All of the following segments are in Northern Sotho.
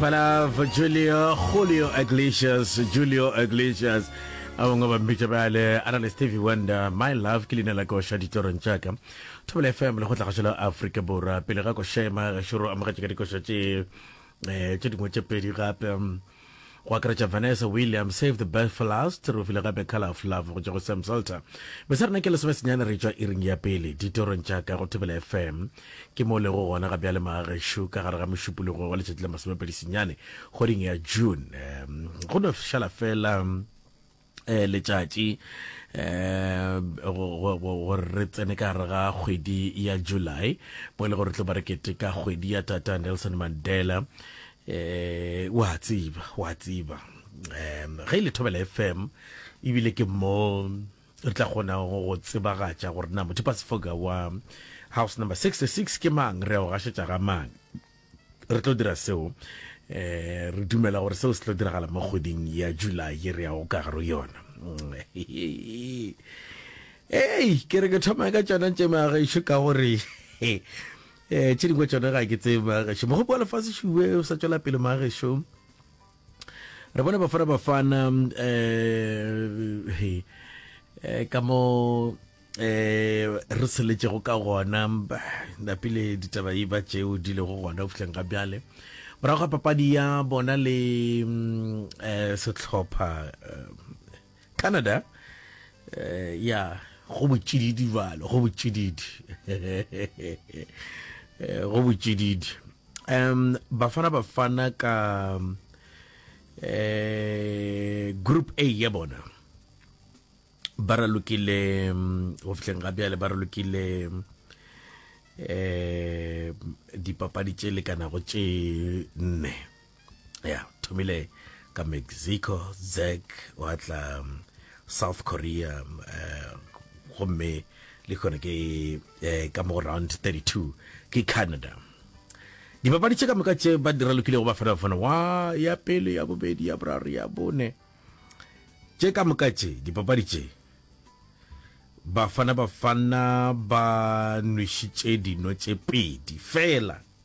Palav Julio Julio Iglesias Julio Iglesias a bangwe ba mmitša bjale a na le stevie wonder my love ke leina la koša ditorong tša ka thobela fm le go tlagatšo la afrika borwa pele ga košema gešoro amogetše ka dikoša tše um tše dingwe tše pedi gape go akaretša Vanessa Williams, Save the Best for Last, re o file gape Colour of Love go tšwa go Sam Salter. Be se re na ke lesome senyane re tšwa iring ya pele ditorong tša ka go Thobela FM. Ke mo o lego gona ga bjale maagešo ka gare ga mošupologo wa letšatši la masomepedi senyane kgweding ya June. Go no šala fela eh letšatši eh gore re tsene ka gare ga kgwedi ya july mo e le gore tlo ba re keteka kgwedi ya tata nelson mandela eh wa tsiba wa tsiba um ge e le thobela fm ebile ke mo re tla kgona go tsebagatša gore na motho pasefoka wa house number 66 ke mang re a o gašetša ga mang re tlo dira seo eh re dumela gore seo se tlo diragala mo kgweding ya july ye re yago ka garo yona ei ke re ke thoma ka tsona tše magaešo ka gore eh tše dingwe tsone ga ke tsebe magaešo mogopo wa lefase šube o sa tswela pele magaešo re bona bafana bafana eh he eh, ka mo eh re seletšego ka gona napile ditaba e ba tšeo di lego gona go fihleng ga bjale morago ga papadi ya bona le mm, eh, sehlopha eh, Canada eh, ya go botšididi balo go botšididi eh, go botšididi um bafana bafana ka eh group A ya bona ba ralokile go mm, fitlheng ga bjale ba ralokile eh dipapadi tše lekanago tše nne ya thomile ka mexico zek wa tla um, south korea um, gomme le kgone ke eh, ka mo round 32 ke canada dipapadi tše ka moka tše ba dira lokile go ba fana fana wa ya pele ya bobedi ya boraro ya bone tše ka moka tše dipapadi tše bafana bafana ba nwešitše dino tše pedi fela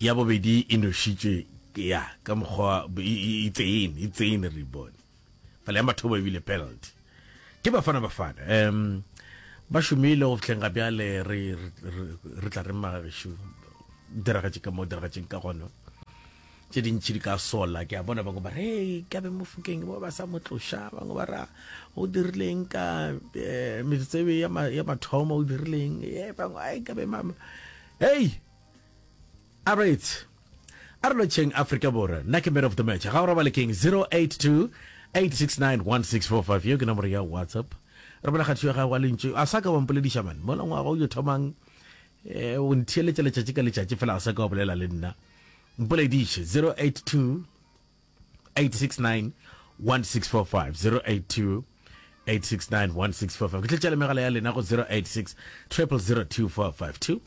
Ya bobedi e nošitšwe ke ya ka mokgwa itsein itsein re bone fela ya mathomo ebile penalty ke bafana bafana um ba šomile go fitlheng ga bjale re re tla re magagešu diragatše ka mo diragatšeng ka gona tše dintšhi di ka sola ke a bona bangwe ba re hey, ka be mofokeng ba ba sa mo tloša bangwe ba ra o dirileng ka eh, metsebe ya mathomo o dirileng e bangwe ai ka be mama Hei! A re it's a re lotšheng Afrika Borwa. Nna ke man of the match. Ga o robale king 082 869 1645 yo ke nomoro ya WhatsApp. Re bona kgathišo ya gago wa lentšu. A sa ka wa mpolediša man. Mola ngwaga o yo thomang eh, o ntheeletša letšatši ka letšatši fela a sa ka wa bolela le nna. Mpolediše 082 869 1645 082 869 1645 ke tletša le megala ya lena go 086 002452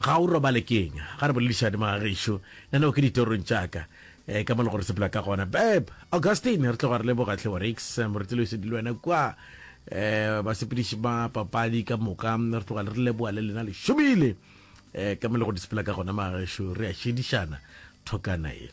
ga o robale keng ga re boledišane magagešo nna neo ke ditorong tšaka um ka mo le gore sepela ka gona beb augustine re tloga re le bogatlhe wa rix moretelo e sedile wena kwa um basepediši ba papadi ka moka re tloga le re leboa le lena le šomile um ka mo le go disepela ka gona magagešo re a šedišana thokana e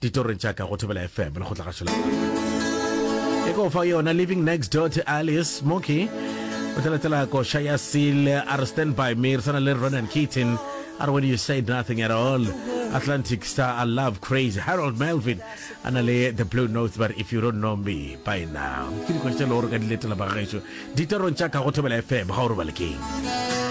Ditorong tša ka go Thobela FM, lekgotla gašo la Paka. E ko fa yona Living Next Door to Alice Smoky. O tla latela koša ya Seal, a re stand by me, re sana le Ronan Keaton. A re when you said nothing at all. Atlantic Star, I love crazy. Harold Melvin, a na le the blue notes, but if you don't know me by now. Ke dikoša tše le gore ka di letela ba gešo. Ditorong tša ka go Thobela FM, ga o robalekeng.